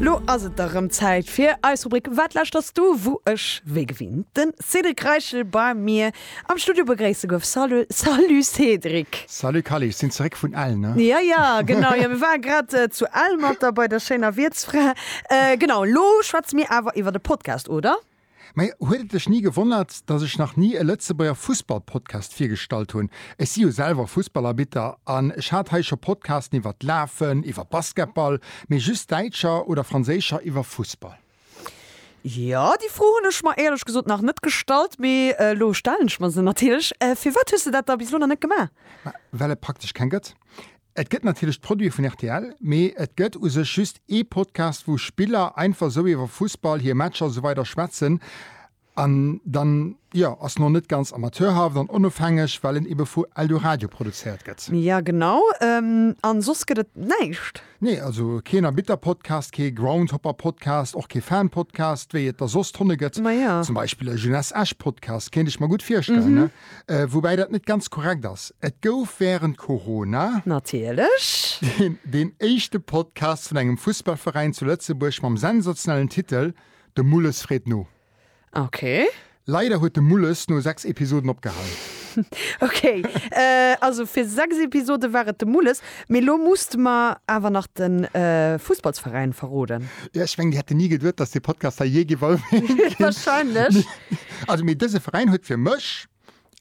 Lo ass et da rëm Zäit fir eis Rubrik Wat lauschters du? wou ech wéi gewinnt den Cédric Reichel bei mir am Studio begréisse gouf. Salu Salut Cédric! Salut Kally, ech sinn zeréck vun Ell, ne? Ja, ja, genau, jo mir ware grad zu Ell mat der bei der schéiner Wiertsfra. Genau, lo schwätze mir awer iwwert e Podcast, oder? Mä huet et lech ni gewonnert, datt ech nach ni e Lëtzebuerger Fussballpodcast virgestallt hunn? Ech si jo selwer Fussballarbitter an ech hat hei scho Podcasten iwwer d'Lafen, iwwer Basketball, mee just däitscher oder franséischer iwwer Fussball. Jo, déi Fro hunn ech mer éierlech gesot nach net gestallt, mee elo stellen ech mer se natierlech. Firwat hues de dat da bis elo nach net gemaach? Mä well et praktesch keng gëtt. Et gëtt natierlech d'Produite vun rtl, mee et gëtt u sech just ee Podcast, wou Spiller einfach esou iwwer Fussball, hir Matcher, esou weider schwätzen. An dann, jo, ass en och net ganz amateurhaft an onofhängeg, well en ebe vu Eldoradio produzéiert gëtt. Ja, genau. An soss gëtt et näischt? Nee, also keen Erbitterpodcast, kee Groundhopperpodcast, och kee Fanpodcast, wéi et der soss tonne gëtt. Ma ja. Zum Beispill e Jeunesse Esch-Podcast, kéint ech mer gutt virstellen. Woubäi dat net ganz korrekt ass. Et gouf wärend Corona. Natierlech. Deen éischte Podcast vun engem Fussballveräin zu Lëtzebuerg mam sensationellen Titel De Mulles freet no. Ok. Leider huet de Mulles no 6 Episoden opgehalen. Ok. Also fir 6 Episode war et de Mulles. Mee lo muss de mer awer nach den Fussballsveräin verroden. Jo, ech mengen déi hätten ni geduet dass dee Podcast hei jee gewall wier ginn. Wahrscheinlech. Also mee dëse Veräin huet fir mech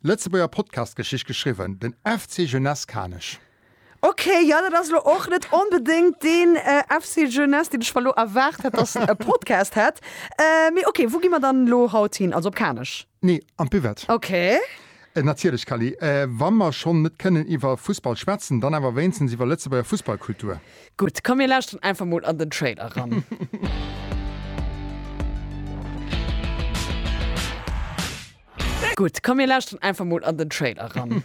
Lëtzebuerger Podcast-Geschicht geschriwwen, den FC Jeunesse Kanech. Ok, jo dat ass lo och net onbedéngt deen FC Jeunesse deen ech mer lo erwaart hätt dass e Podcast hätt. Mee ok, wou gi mer dann lo haut hin? Also op Kanech? Nee, an d'Buvette. Ok. Natierlech, Cally. Wa mer schonn net kënnen iwwer Fussball schwätzen, dann awer wéinstens iwwer Lëtzebuerger Fussballkultur. Gutt, komm mir lauschteren einfach mol an den Trailer eran. Gutt, komm mir lauschteren einfach mol an den Trailer eran.